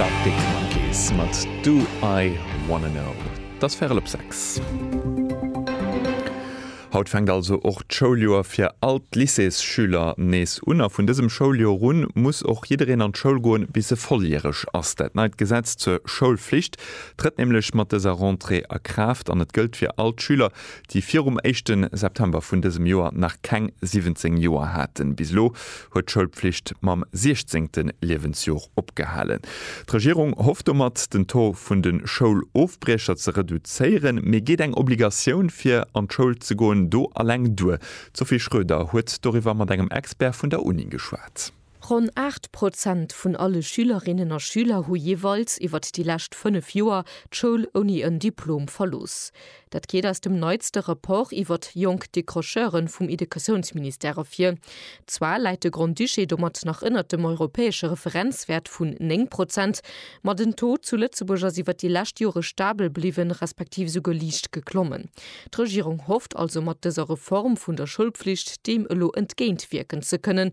D'Arctic Monkeys mat Do I Wanna Know. Et ass Värel op 6. Haut fänkt also och d'Schouljoer fir all d'Lycéesschüler nees un. A vun dësem Schouljoer un muss och jiddereen an d'Schoul goen, bis e volljäreg ass. Dat neit Gesetz zur Schoulflicht trëtt nämlech mat dëser Rentrée a Kraaft an et gëllt fir all d'Schüler, déi virum éischte September vun dësem Joer nach keng 17 Joer haten. Bis elo huet d'Schoulpflicht mam 16. Liewensjor opgehalen. D'Regierung hofft domat, den Taux vun de Schoulofbriecher ze reduzéieren. Mee geet eng Obligatioun fir an d'Schoul ze goen do eleng duer? D'Sophie Schröder huet doriwwer mat engem Expert vun der Uni geschwat. Ronn 8 Prozent vun alle Schülerinnen a Schüler hu jeeweils iwwert déi lescht 5 Joer d'Schoul ouni en Diplom verlooss. Dat geet aus dem neitste Rapport iwwert jonk Décrocheuren vum Idekatiounsministère ervir. Zwar läit de Grand-Duché domat nach ënnert dem europäesche Referenzwäert vun 9 Prozent, ma den Taux zu Lëtzebuerg ass iwwert déi lescht Jore stabel bliwwen, respektiv esouguer liicht geklommen. D'Regierung hofft also mat dëser Reform vun der Schoulpflicht deem elo entgéintwierken ze kënnen,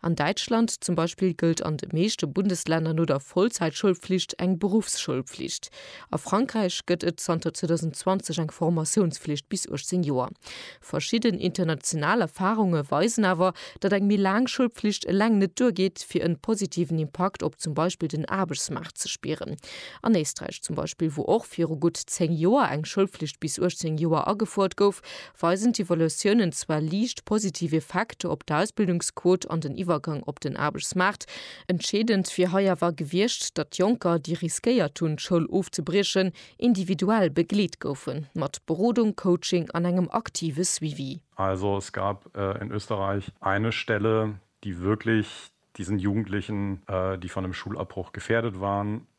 An Däitschland zum Beispill gëllt an de meeschte Bundeslänner no der Vollzäitschoulpflicht eng Beruffsschoulpflicht. A Frankräich gëtt et zanter 2020 eng Formatiounspflicht bis 18 Joer. Verschidden international Erfarunge weisen awer, datt eng méi laang Schoulpflicht eleng net duergeet, fir en positiven Impakt op zum Beispill den Aarbechtsmaart ze spieren. An Éisträich zum Beispill, wou och viru gutt 10 Joer eng Schoulpflicht bis 18 Joer agefuert gouf, weisen d'Evaluatiounen zwar liicht positiv Effekter op d'Ausbildungsquot an den Iwwergang op den Aarbechtsmaart. Entscheedend wier hei awer gewiescht, datt Jonker, déi riskéiert hunn, d'Schoul ofzebriechen, individuell begleet goufe mat Berodung, Coaching an engem aktive Suivi. Also es gab in Österreich eine Stelle, die wirklich diesen Jugendlichen, die von dem Schulabbruch gefährdet waren,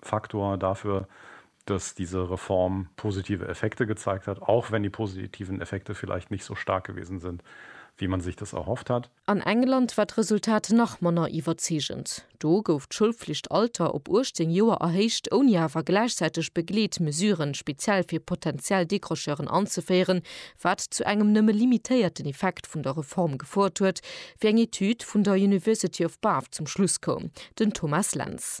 Faktor dafür, dass diese Reform positive Effekte gezeigt hat, auch wenn die positiven Effekte vielleicht nicht so stark gewesen sind, wie man sich das erhofft hat. An England war d'Resultat nach manner iwwerzeegend. Do gouf d'Schoulflichtalter op 18 Joer erhéicht, ouni awer gläichzäiteg begleet Mesuren speziell fir potentiell Décrocheuren anzeféieren, wat zu engem nëmme limitéierten Effekt vun der Reform gefouert huet, wéi eng Etüd vun der University of Bath zum Schluss koum. Den Thomas Lentz.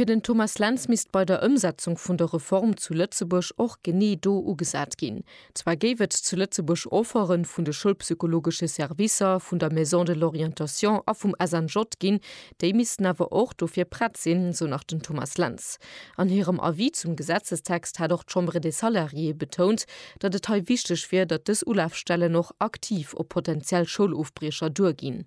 Fir den Thomas Lentz misst bei der Ëmsetzung vun der Reform zu Lëtzebuerg och genee do ugesat ginn. Zwar géif et zu Lëtzebuerg Offere vun de schoulpsychologesche Servicer, vun der Maison de l'orientation a vum SNJ ginn, déi missten awer och dofir prett sinn, sou nach den Thomas Lentz. An hirem Avis zum Gesetzestext hat och d'Chambre des salariés betount, datt et hei wichteg wier, datt dës Ulafstellen och aktiv op potentiell Schoulofbriecher duerginn.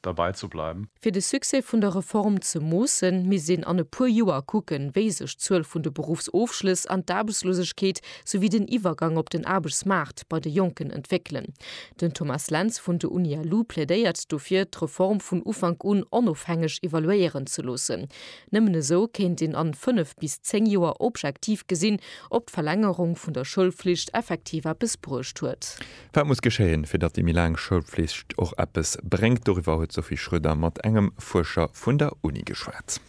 derbei ze bleiwen. Fir de Succès vun der Reform ze moossen, misst een an e puer Joer kucken, wéi sech d'Zuel vun de Beruffsofschlëss an d'Aarbechtslosegkeet souwéi den Iwwergang op den Aarbechtsmaart bei de Jonken entwéckelen. Den Thomas Lentz vun de Unialu plädéiert dofir, d'Reform vun Ufank un onofhängeg evaluéieren ze loossen. Nëmmen esou kéint een an fënnef bis zéng Joer objektiv gesinn, ob d'Verlängerung vun der Schoulflicht effektiv eppes bruecht huet. Wat muss geschéien, fir datt déi méi laang Schoulflicht och eppes bréngt? Doriwwer huet d'Sophie Schroeder mat engem Fuerscher vun der Uni geschwat.